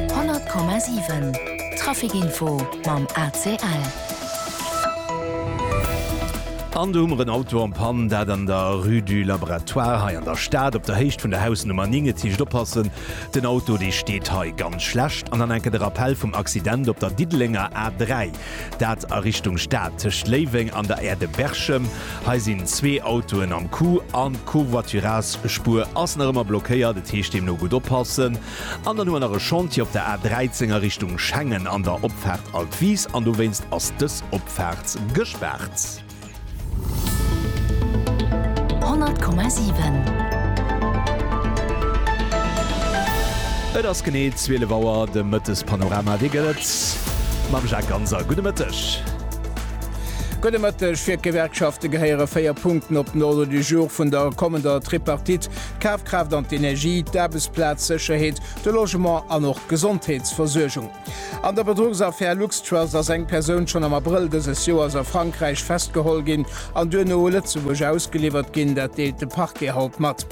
100,7 Traficinfo mam ACL. An do hu mer en Auto en panne, dat an der Rue du Laboratoire hei an der Stad, op der Héicht vun der Hausnummer 9. Et heescht oppassen, den Auto dee steet hei ganz schlecht. An dann enke de Rappell vum Accident op der Diddelenger A3. Dat a Richtung Stad tëscht Léiweng an der Aire de Berchem. Hei sinn zwee Autoen am Coup an d'Covoiturage-Spuer ass nach ëmmer blockéiert. Et heescht deemno gutt oppassen. An dann hu mer nach e Chantier op der A13 a Richtung Schengen an der Opfaart Altwies an dowéinst ass dës Opfaart gespaart. Et ass genee 12 Auer, de Mëttespanorama. Wéi gëtt et mam Jacques Ganser? Gudde Mëtteg. Gudde Mëtteg. Fir d'Gewerkschafte gehéiere véier Punkten op den Ordre du jour vun der kommender Tripartite, d'Kafkraaft an d'Energie, d'Aarbechtsplazsécherheet, de Logement an och d'Gesondheetsversuergung. An der Bedruchsaffär LuxTrust ass eng Persoun schonn am Abrëll dëses Joers a Frankräich festgeholl ginn an duerno u Lëtzebuerg ausgeliwwert ginn. Dat deelt de Parquet haut mat.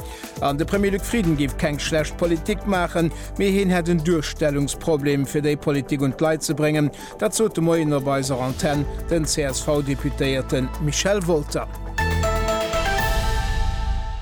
An de Premier Luc Frieden géif keng schlecht Politik maachen, mee hien hätt en Duerstellungsproblem, fir déi Politik un d'Leit ze bréngen. Dat sot de Moien op eiser Antenn den CSV-Deputéierte Michel Wolter.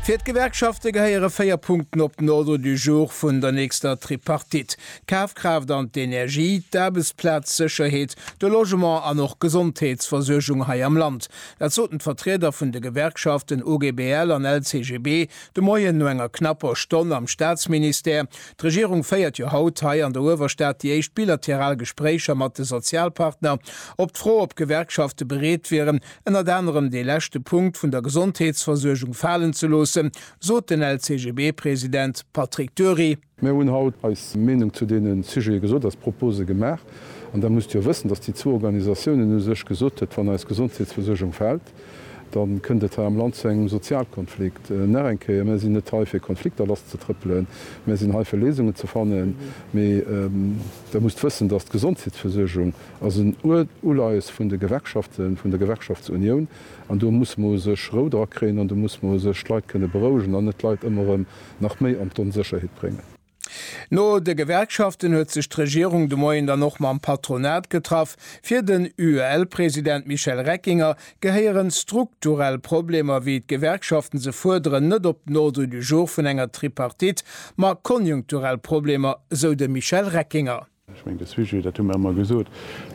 Fir d'Gewerkschafte gehéiere véier Punkten op den Ordre du jour vun der nächster Tripartite. D'Kafkraaft an d'Energie, d'Aarbechtsplaz, d'Sécherheet, de Logement an och d'Gesondheetsversuergung hei am Land, dat soten d'Vertrieder vun de Gewerkschaften OGBL an LCGB de Moien no enger knapper Stonn am Staatsministère. D'Regierung féiert jo haut hei an der Uewerstad déi éischt bilateral Gespréicher mat de Sozialpartner. Op d'Fro, ob d'Gewerkschafte bereet wieren, ënnert anerem dee leschte Punkt vun der Gesondheetsversuergung falen ze loossen, sot den LCGB-President Patrick Dury, Mir hunn haut eis Meenung zu deene Sujete gesot, eis Propose gemaach. An da musst Dir wëssen, dass déi zwou Organisatiounen u sech gesot huet, wann eis Gesondheetsversuergung fält, da kënnt et hei am Land zu engem Sozialkonflikt. Nach eng Kéier, Mär sinn net hei fir Konflikter lasszetrëppelen. Mär sinn hei fir Léisungen ze fannen. Mee Der musst wëssen, dass d'Gesondheetsversuergung ass en Uleies vun de Gewerkschaften, vun der Gewerkschaftsunioun. An do muss mer u sech Rou drakréien an do muss mer u sech d'Leit kënne berouegen an net d'Leit ëmmer erëm, nach méi an d'Onsécherheet bréngen. No de Gewerkschaften huet sech d'Regierung de Moien dann och mam Patronat getraff. Fir den UEL-President Michel Reckinger gehéiere strukturell Problemer, wéi d'Gewerkschaften se fuerderen, net op den Ordre du jour vun enger Tripartite, ma konjunkturell Problemer, sou de Michel Reckinger. Ech mengen, de Sujet, dat hu mer ëmmer gesot,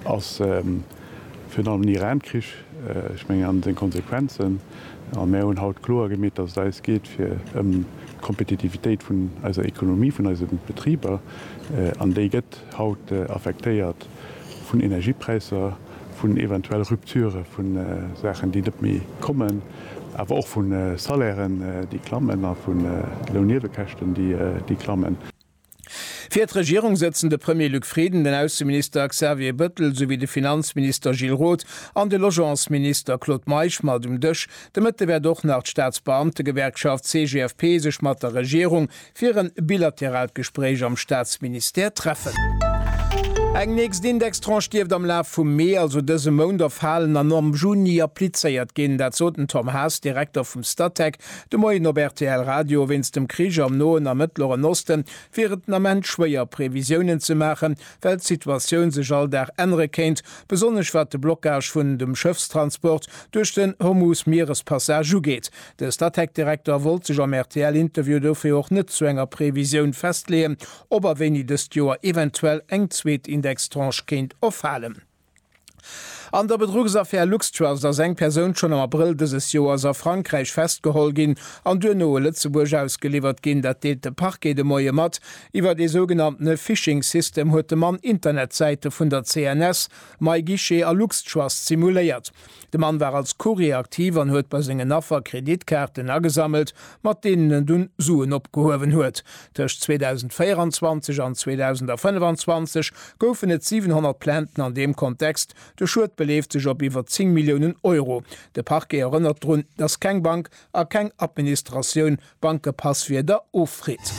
ass virun allem den Iran-Krich, ech mengen, an seng Konsequenzen. A mer hunn haut kloer gemeet, dass et eis geet fir ëm d'Kompetitivitéit vun eiser Ekonomie, vun eise Betriber. An déi gëtt haut affektéiert vun Energiepräisser, vun eventuell Rupture vu Saachen, déi net méi kommen, awer och vu Salairen, déi klammen a vu Lounniewekäschten, déi klammen. Fir d'Regierung sëtzen de Premier Luc Frieden, den Ausseminister Xavier Bëttel souwéi de Finanzminister Gilles Roth an de Logementsminister Claude Meisch mat um Dësch. De Mëtte wäert och nach d'Staatsbeamtegewerkschaft CGFP sech mat der Regierung fir e bilateraalt Gespréich am Staatsministère treffen. Eng nächst Indextranche dierft am Laf vum Mee, also dëse Mount, erfalen an am Juni applizéiert ginn. Dat sot den Tom Haas, Direkter vum Statec, De Moien op rtl Radio, Wéinst dem Krich am Noen a Mëttleren Oste wier et den Ament schwéier, Previsiounen ze maachen, well d'Situatioun sech all Dag ännere kéint, besonnesch wat de Blockage vun dem Schëffstransport duerch den Hormuz-Mierespassage ugeet. De Statec-Direkter wollt sech am RTL-Interview dofir och net zu enger Previsioun festleeën, ob a wéini dëst Joer eventuell eng zweet Indextranche kéint erfalen. An der Bedruchsaffär LuxTrust ass eng Persoun schonn am Abrëll dëses Joers a Frankräich festgeholl ginn an duerno u Lëtzebuerg ausgeliwwert ginn. Dat deelt de Parquet de Moie mat. Iwwert ee sougenanntene Phishing-System huet de Mann Internetsäite vun der CNS, MyGuichet a LuxTrust simuléiert. De Mann war als Courrier aktiv an huet bei sengen Affer Kreditkaarten agesammelt, mat deenen en dunn Suen opgehuewen huet. Tëscht 2024 an 2025 goufen et 700 Plainten an deem Kontext. De Schued beleeft sech op iwwer 10 Milliounen Euro. De Parquet erënnert drun, datt keng Bank a keng Administratioun Bankepasswierder offritt.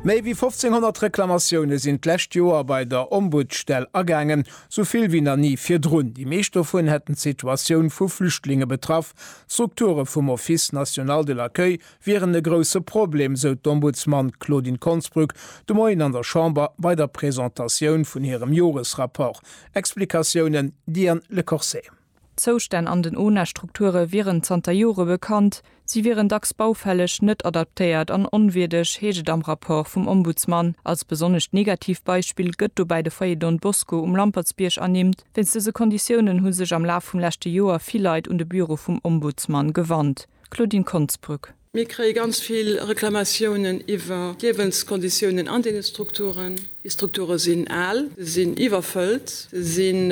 Méi wéi 1500 Reklamatioune sinn d'lescht Joer bei der Ombudsstell agaangen, esou vill wéi nach ni virdrun. Déi meescht dovun hätten d'Situatioun vu Flüchtlinge betraff. D'Strukture vum Office national de l'accueil wieren e grousse Problem, sou d'Ombudsman Claudine Konsbrück de Moien an der Chamber bei der Presentatioun vun hirem Joresrapport. Explikatiounen, Diane Lecorset. D'Zoustänn an den ONA-Strukture wieren zanter Jore bekannt, si wieren dacks baufälleg, net adaptéiert an onwierdeg, heescht et am Rapport vum Ombudsman. Als besonnescht negatiivt Beispill gëtt dobäi de Foyer Don Bosco um Lampertsbierg ernimmt. Wéinst dëse Konditiounen hu sech am Laf vum leschte Joer vill Leit un de Büro vum Ombudsman gewannt. Claudine Konsbrück. Mir kréie ganz vill Reklamatiounen iwwer d'Liewenskonditiounen an deene Strukturen. Déi Strukture sinn al, se sinn iwwerfëllt, se sinn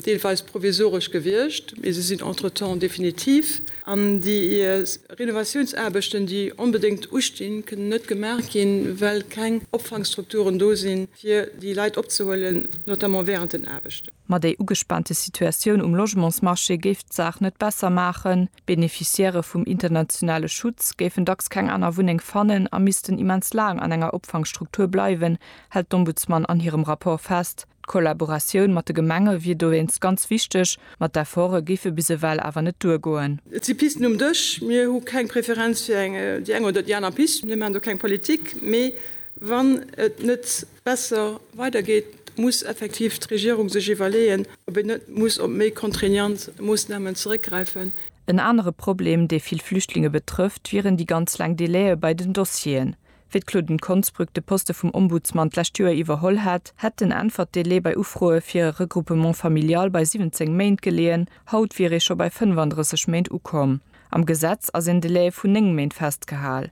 deelweis provisoresch gewiescht, mee se sinn entretemps definitiv. An déi Renovatiounsaarbechten, déi onbedéngt ustinn, kënnen net gemaach ginn, well keng Opfangstrukturen do sinn, fir déi Leit opzehuelen, notamment wärend den Aarbechten. Ma déi ugespaante Situatioun um Logementsmarché géif d'Saach net besser maachen. D'Beneficiairë vum internationale Schutz géifen dacks keng aner Wunneng fannen a missten immens laang an enger Opfangstruktur bleiwen, hält d'Ombudsman an hirem Rapport fest. D'Kollaboratioun mat de Gemenge wier dowéinst ganz wichteg, mat d'Efforte géife bis ewell awer net duergoen. Et si Pisten um Dësch. Mir hu keng Preferenz fir déi eng oder déi aner Pist. Mir maachen do keng Politik. Mee Wann et net besser weidergeet, muss effektiv d'Regierung sech iwwerleeën, ob een net muss op méi contraignant Moossnamen zeréckgräifen. En anere Problem, dee vill Flüchtlinge betrëfft, wieren déi ganz laang Délaië bei den Dossieren. Wéi d'Claudine Konsbrück de Poste vum Ombudsman d'lescht Joer iwwerholl hätt, hätt den Äntwert-Délai bei Ufroe fir e Regroupement familial bei 17 Méint geleeën, haut wier ee scho bei 35 Méint ukomm. Am Gesetz ass een Délai vun 9 Méint festgehal.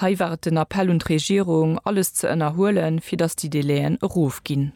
Hei war et den Appell un d'Regierung, alles ze ënnerhuelen, fir datt déi Délai'en erofginn.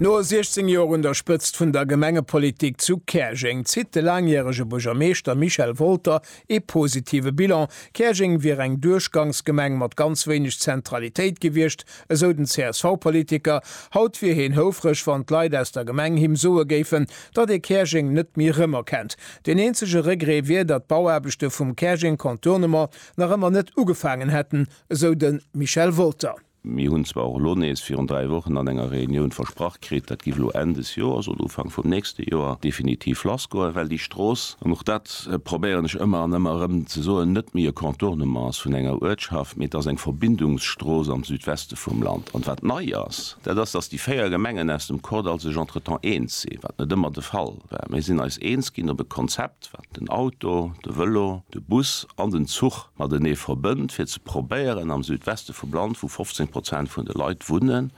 No 16 Joer un der Spëtzt vun der Gemengepolitik zu Käerjeng zitt de laangjärege Buergermeeschter Michel Wolter ee positive Bilan. Käerjeng wier eng Duerchgangsgemeng mat ganz wéineg Zentralitéit gewiescht, esou den CSV-Politiker. Haut wier hien houfreg, wann d'Leit aus der Gemeng him soe géifen, datt ee Käerjeng net méi rëmerkennt. Den eenzege Regret wier, datt d'Bauaarbechte vum Käerjeng Contournement nach ëmmer net ugefaangen hätten, esou de Michel Wolter. Mir hunn zwar och elo nees virun dräi Wochen an enger Reunioun versprach kritt, dat giff elo Enn des Joers oder Ufank vum nächste Joer definitiv lassgoen, well déi Strooss, an och dat probéieren ech ëmmer an ëmmer erëm ze soen, net méi e Contournement ass vun enger Uertschaft, mee et ass eng Verbindungsstrooss am Südweste vum Land. An wat nei ass, dat ass, datt déi véier Gemengen aus dem CODAL sech entretemps eens si, wat net ëmmer de Fall. Mir sinn eis eens ginn op e Konzept, wat den Auto, de Vëlo, de Bus an den Zuch matenee verbënnt, fir ze probéieren am Südweste vum Land, wou 15 Prozent vun de Leit wunnen,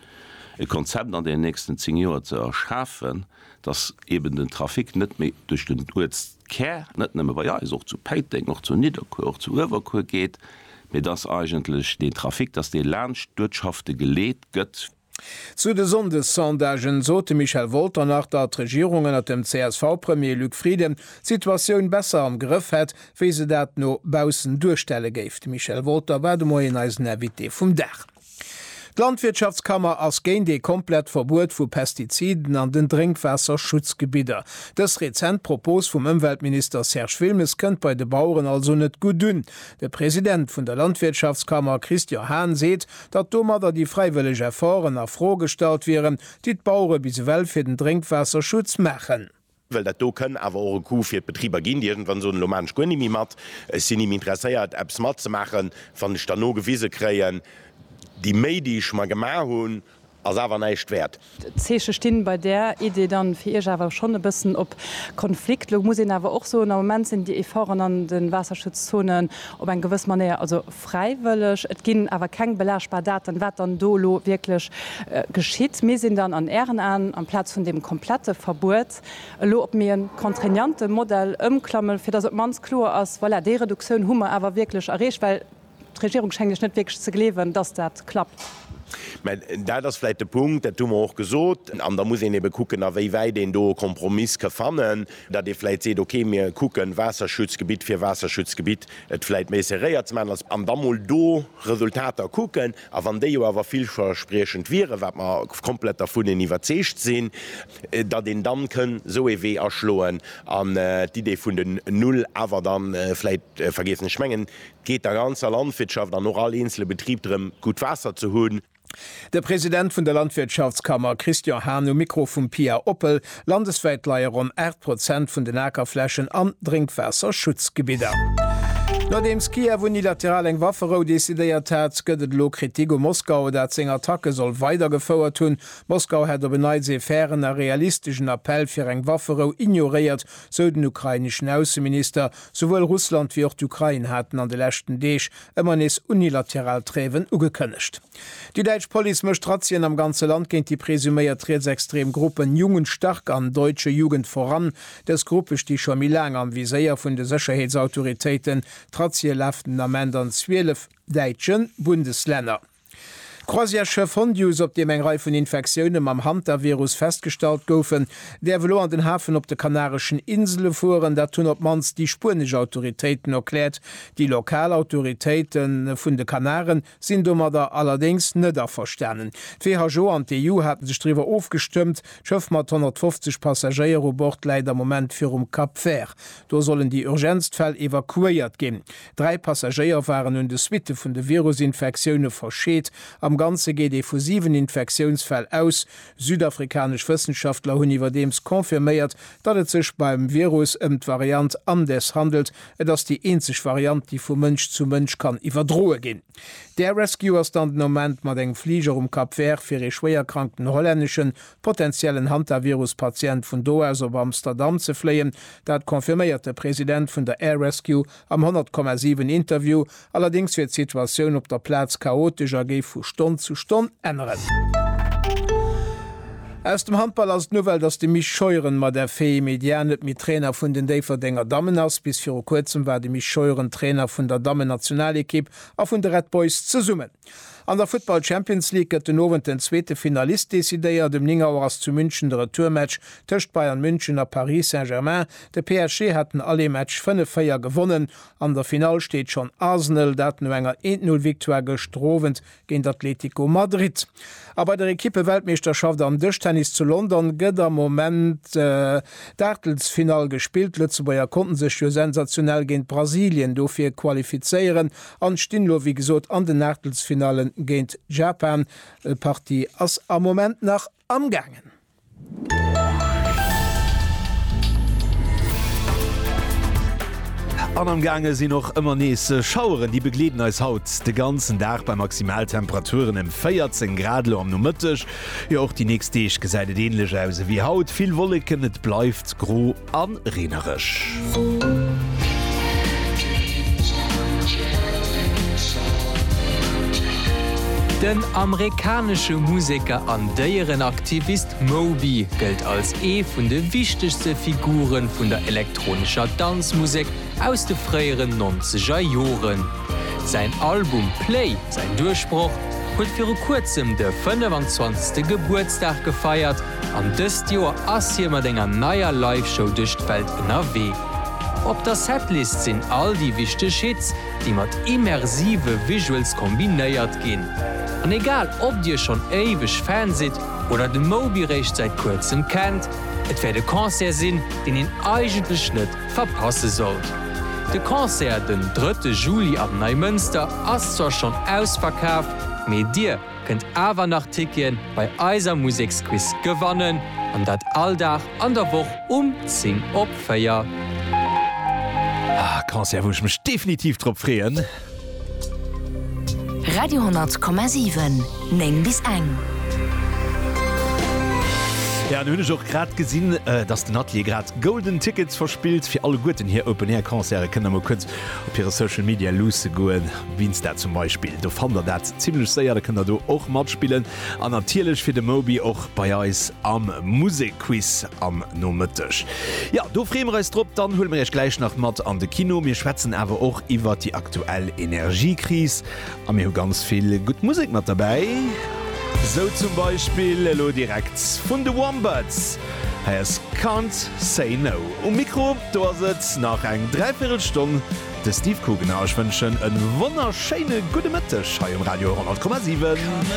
e Konzept an den nächsten zéng Joer ze erschafen, dass eeben den Trafic net méi duerch den Uertskär, net nëmme bei eis, och zu Péiteng, och zu Nidderkuer, och zu Uewerkuer geet, mee dass eigentlech deen Trafic, dass dee laanscht d'Uertschafte geleet gëtt. Zu de Sonndessondagen sot de Michel Wolter nach, datt d'Regierung ënner dem CSV-Premier Luc Frieden d'Situatioun besser am Grëff hätt, wéi se dat no baussen duerstelle géif. De Michel Wolter war de Moien eisen Invité vum Dag. D'Landwirtschaftskammer ass géint ee komplett Verbuet vu Pestiziden an den Drénkwaasserschutzgebidder. Dës rezent Propos vum Ëmweltminister Serge Wilmes kënnt bei de Baueren also net gutt un. De President vun der Landwirtschaftskammer Christian Hahn seet, datt domadder déi fräiwëlleg Efforten a Fro gestallt wieren, déi d'Bauere bis ewell fir den Drénkwaasserschutz maachen. Well dat do kënn awer och e Coût fir d'Betriber ginn, déi iergendwann soen, elo maachen ech guer ni méi mat, ech sinn ni méi interesséiert, eppes matzemaachen, wann ech dann nogewise kréien, déi Méi, déi ech mer gemaach hunn, Ass awer näischt wäert. D'Zeeche stinn bei där Idee dann fir Iech awer schonn e bëssen op Konflikt. Lo muss een awer och soen, am Moment sinn déi Efforten an de Waasserschutzzonen op eng gewëss Manéier also fräiwëlleg. Et ginn awer keng belaagbar Daten, wat dann do elo wierklech geschitt. Mir sinn dann an Ären Aen, amplaz vun deem komplette Verbuet, elo op méi e contraignante Modell ëmklamme fir datt op d'mannst kloer ass, voilà, déi Reduktioun hu mer awer wierklech erreecht. Well D'Regierung schéngt lech net wierklech ze gleewen, dass dat klappt. Mä dat ass vläicht de Punkt, dat hu mer och gesot. An da muss een ebe kucken, a wéi wäit een do e Kompromiss ka fannen, datt ee vläicht seet, okay, mir kucken, Waasserschutzgebitt fir Waasserschutzgebitt et vläicht méi serréiert ze maachen, an da mol do Resultater kucken. A wann déi jo awer villverspriechend wieren, wat mer komplett dervun iwwerzeegt sinn, datt een dann kënn esou ee Wee aschloen an d'Idee vun den Null awer dann vläicht vergiessen. Ech mengen, geet der ganzer Landwirtschaft an och all eenzele Betrib drëm, gutt Waasser ze hunn. De President vun der Landwirtschaftskammer Christian Hahn um Mikro vum Pia Oppel. Landeswäit leie ronn 8 Prozent vun den Akerflächen an Drénkwaasserschutzgebidder. Nodeems Kiew unilateral eng Wafferou decidéiert hat, gëtt et elo Kritik u Moskau, dat seng Attacke soll weidergefouert hunn. Moskau hätt op en Neits ee fairen a realisteschen Appell fir eng Wafferou ignoréiert, sou den ukraineschen Ausseminister. Souwuel Russland wéi och d'Ukrain haten an de leschten Deeg ëmmer nees unilateral Tréiwen ugekënnegt. Déi däitsch Police mécht Razzien am ganze Land géint déi presuméiert rietsextrem Gruppen Jungen stark an Deutsche Jugend voran. Dës Gruppe sti scho méi laang am Viséier vun de Sécherheetsautoritéiten. D'Razzie lafen den Ament an 12 däitsche Bundeslänner. D'Croisièreschiff Hondius, op deem eng Rei vun Infektioune mam Hantavirus festgestallt goufen, däerf elo an den Hafen op de Kanareschen Insele fueren. Dat hunn op d'mannst déi spuenesch Autoritéiten erkläert. Déi lokal Autoritéite vun de Kanaren sinn domadder allerdéngs net averstanen. D'WHO an d'EU hate sech driwwer ofgestëmmt. D'Schëff mat 150 Passagéier u Bord läit am Moment virum Cap Vert. Do sollen déi urgentst Fäll evakuéiert ginn. Dräi Passagéier waren un de Suitte vun de Virusinfektioune verscheet. Am Ganze geet ee vu 7 Infektiounsfäll aus. Südafrikanesch Wëssenschaftler hunn iwwerdeems confirméiert, datt et sech beim Virus ëm d'Variant Andes handelt. Et ass déi eenzeg Variant, déi vu Mënsch zu Mënsch kann iwwerdroe ginn. D'Air Rescue ass dann den Ament mat engem Fliger um Cap Vert fir ee schwéierkrankten hollänneschen, potenziellen Hantavirus-Patient vun do aus op Amsterdam ze fléien. Dat confirméiert de President vun der Air Rescue, Am 100,7 Interview allerdéngs wier d'Situatioun op der Plaz chaotesch a géif vu Stonn zu Stonn änneren. Aus dem Handball ass d'Nouvelle, datt de Mich Scheuren mat FE Médias net méi Trainer vun den Déifferdenger Dammen ass. Bis viru kuerzem war de Mich Scheuren Trainer vun der Dammen-Nationalekipp a vun de Red Boys zesummen. An der Futtball Champions League gëtt den Owend den zweete Finalist decidéiert. Um 9 Auer ass zu München de Retourmatch tëscht Bayern München a Paris Saint-Germain. De PSG hat den Aller-Match 5, 4 gewonnen. An der Finall steet schonn Arsenal, dat no enger 1, 0 Victoire gëschter Owend géint Atletico Madrid. A bei der Ekippe-Weltmeeschterschaft am Dëschtennis zu London gëtt am Moment d'Aachtelsfinall gespillt. D'Lëtzebuerger konnte sech jo sensationell géint Brasilien dofir qualifizéieren An stinn lo wéi gesot an den Aachtelsfinallen géint Japan. Partie ass am Moment nach am gaangen. An am gaange sinn och ëmmer nees Schaueren. Déi begleeden eis haut de ganzen Dag bei Maximaltemperaturen em 14 Grad lo am Nomëtteg. Jo och déi nächst Deeg gesäit et ähnlech aus ewéi haut, vill Wolleken, et bleift gro. An reenerech. Den amerikanesche Museker an Déierenaktivist Moby gëllt als ee vun de wichtegste Figure vun der elektronescher Danzmusek aus de fréieren nonzeger Joren. Säin Album Play, säin Duerchbroch, huet viru kuerzem de 25. Gebuertsdag gefeiert, An dëst Joer ass hie mat enger neier Live-Show duerch d'Welt ënnerwee. Op der Setlist sinn all déi wichteg Hits, déi mat immersive Visuals kombinéiert ginn. An egal ob dir schonn éiweg Fan sidd oder de Moby réischt säit kuerzem kennt, et wäert e Concert sinn, deen een eigentlech net verpasse sollt. De Concert den drëtte Juli am Neimënster ass zwar schonn ausverkaf, mee dir, kënnt awer nach Tickien bei eiser Museksquiz gewannen an dat all Dag an der Woch um 10 op 4. Ah, e Concert wou ech mech definitiv drop freeën. Radio 10,7, 9 bis eng. Jo, an hunn ech och grad gesinn, dass den Atelier grad Golden Tickets verspillt fir alleguerten hir Open Air Concerte. Kënnt da mol kuerz op hire Social Media luusse goen. Winster zum Beispill, do fannt der dat zimlech séier, da kënnt der do och matspillen an natierlech fir de Moby och bei eis am Musekquiz am Nomëtteg. Jo, do freeë mir eis drop. Dann huele mir iech gläich nach mat an de Kino. Mir schwätzen awer och iwwert déi aktuell Energiekris a mir hu ganz vill gutt Musek mat derbäi, sou zum Beispill elo direkt vun de Wombats. Hei ass Can't Say No. Um Mikro do ass et nach eng Dräivirrelstonn. De Steve Coogan a ech wënschen e wonnerschéine gudde Mëtteg hei um Radio 100,7.